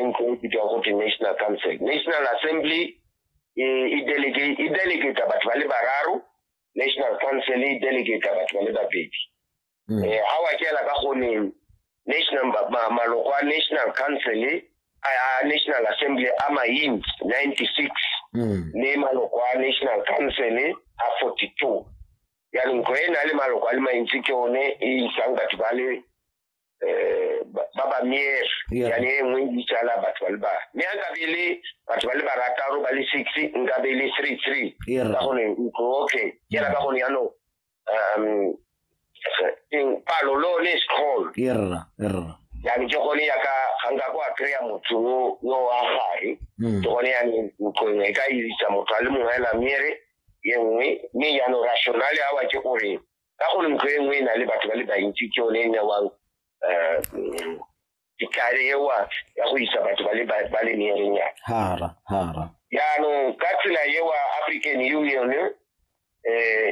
e ntse e bitswang go te national council national assembly e, e delegate e delegate batho ba le bararo national council e delegate batho ba le babedi mm. eh ha wa kela ka go ne national maloko a national council a national assembly a maint 96 mm. le maloko a national council a 42 ya ntlo e na le maloko a le mantsi ke one e isang batho ba le um ba ba miere yane e nngwe ditsala batho ba le ba mme a nkabe le batho ba le barataro ba le six nkabe le three three ka gone ntlo okay ke ka gone yanong um eng palo lo le scroll erra erra yani ke gone ya ka ga nka kwa kry-a motho yo wa gare hmm. ke gone yani ntlong e ka isa motho a le mongwe la miere ye nngwe mme yano rationale awa ke gore ka gore ntlo e nngwe e na le batho ba le bantsi ke yone e newang um dikale ewa ya go isa batho ba le ba- ba le meerenyana hara hara jaanong ka tsela ewa african union um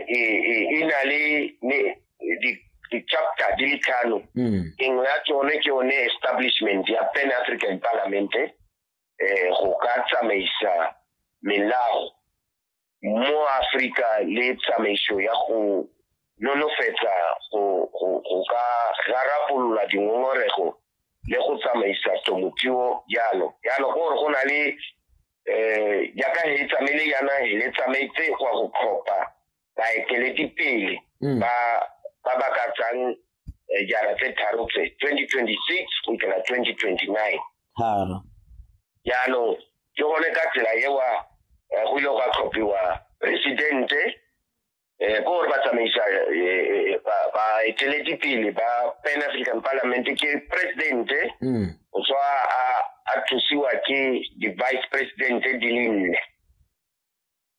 e na le ne- di- di-chapter di le tlhano mm engwe ya tsone ke yone establishment ya pan african parliament eh go ka tsamaisa melao mo Afrika le tsamaiso ya go nonofetsa go ka rarapolola dingongorego le go tsamaisa temothuo jalo jalo ke gore go na le um jaaka he tsamaile yana le tsamaetse gwa go tlhopha baeteledipele mm. ba ba ba ka tsang eh, jara tse tharo tse 2026 go ikela 2029 jaanong ke gone ka tsela ewa eh, go ile gwa tlhophiwa presidente um eh, ko gore ba tsamaisa eh, baeteledipele ba pan african parliament ke presidente mm. o tswa a thusiwa ke di-vice presidente di le nne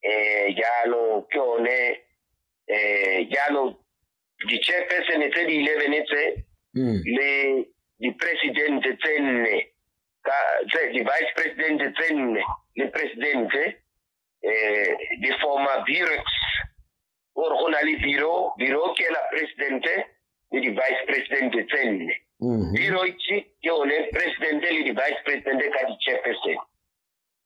eh, jalo ke one eh, jalo di-chairpersone tse di eleven tse hmm. le di-presidente tse nne di-vice presidente tse nne le presidente eh, di forma burex ore go na le biro biro ke la presidente le di-vice presidente tse nne hmm. biro ke one presidente le di-vice presidente ka di-chairpersone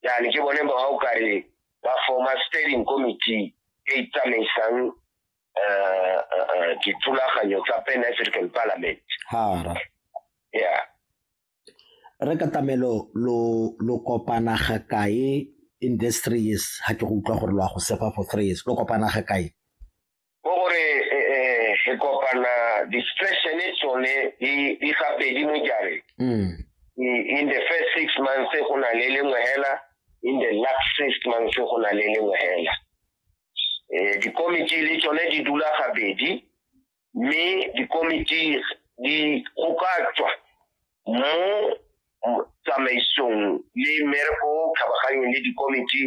yani ke bone ba o kare ba forma steering committee e e tsamaisang eh, eh, eh, dithulaganyo tsa pan african parliament hara ya re ka tamelo lo lo kopana ga kae in this three years ha ke go utlwa gore lo a go sefa for three years lo kopana ga kae ke gore e, e, re kopana distressene tsone di di gabedi mo jareng mm. I- in the first six months go na le lengwe hela in the last six months go na le lengwe hela um dikomiti le tsone di dula gabedi mme dikomiti di go ka tswa mo mo tsamaisong le mmereko o kgabaganyeng le dikomiti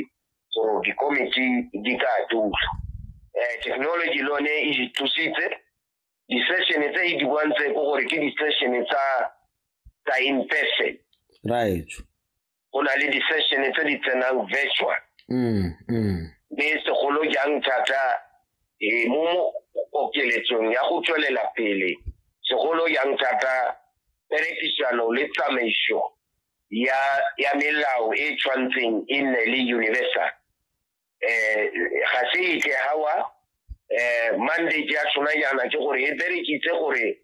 so dikomiti di ka dula um technology le one e di thusitse di-session tse e di bontse ko gore ke di-session tsa tsa in person right go na le di-session tse di tsenang virtual mm, mm. mme segolo jang thata um mo okeletsong ya go tswelela pele segolo jang thata perekisano le tsamaiso ya ya melao e tshwantseng e nne le universal eh ga se e ke hawa eh mandate ya tsona yana ke gore e berekitse gore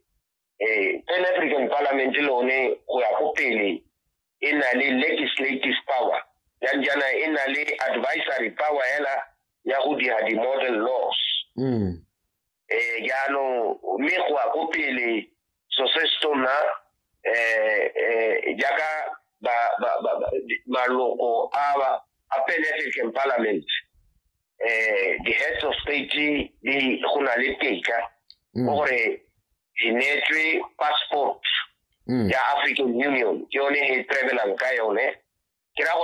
eh Pan African Parliament le one go ya go pele e na le legislative power ya jana e na le advisory power ela ya go dira di model laws mm. eh jalo mme go a go pele so se se tona eh eh jaaka ba ba ba maloko a ba a penetrate parliament eh the heads of state di go na le teka mm. gore di netswe passport mm. ya African Union ke yone e travelang ka yone ke ra gore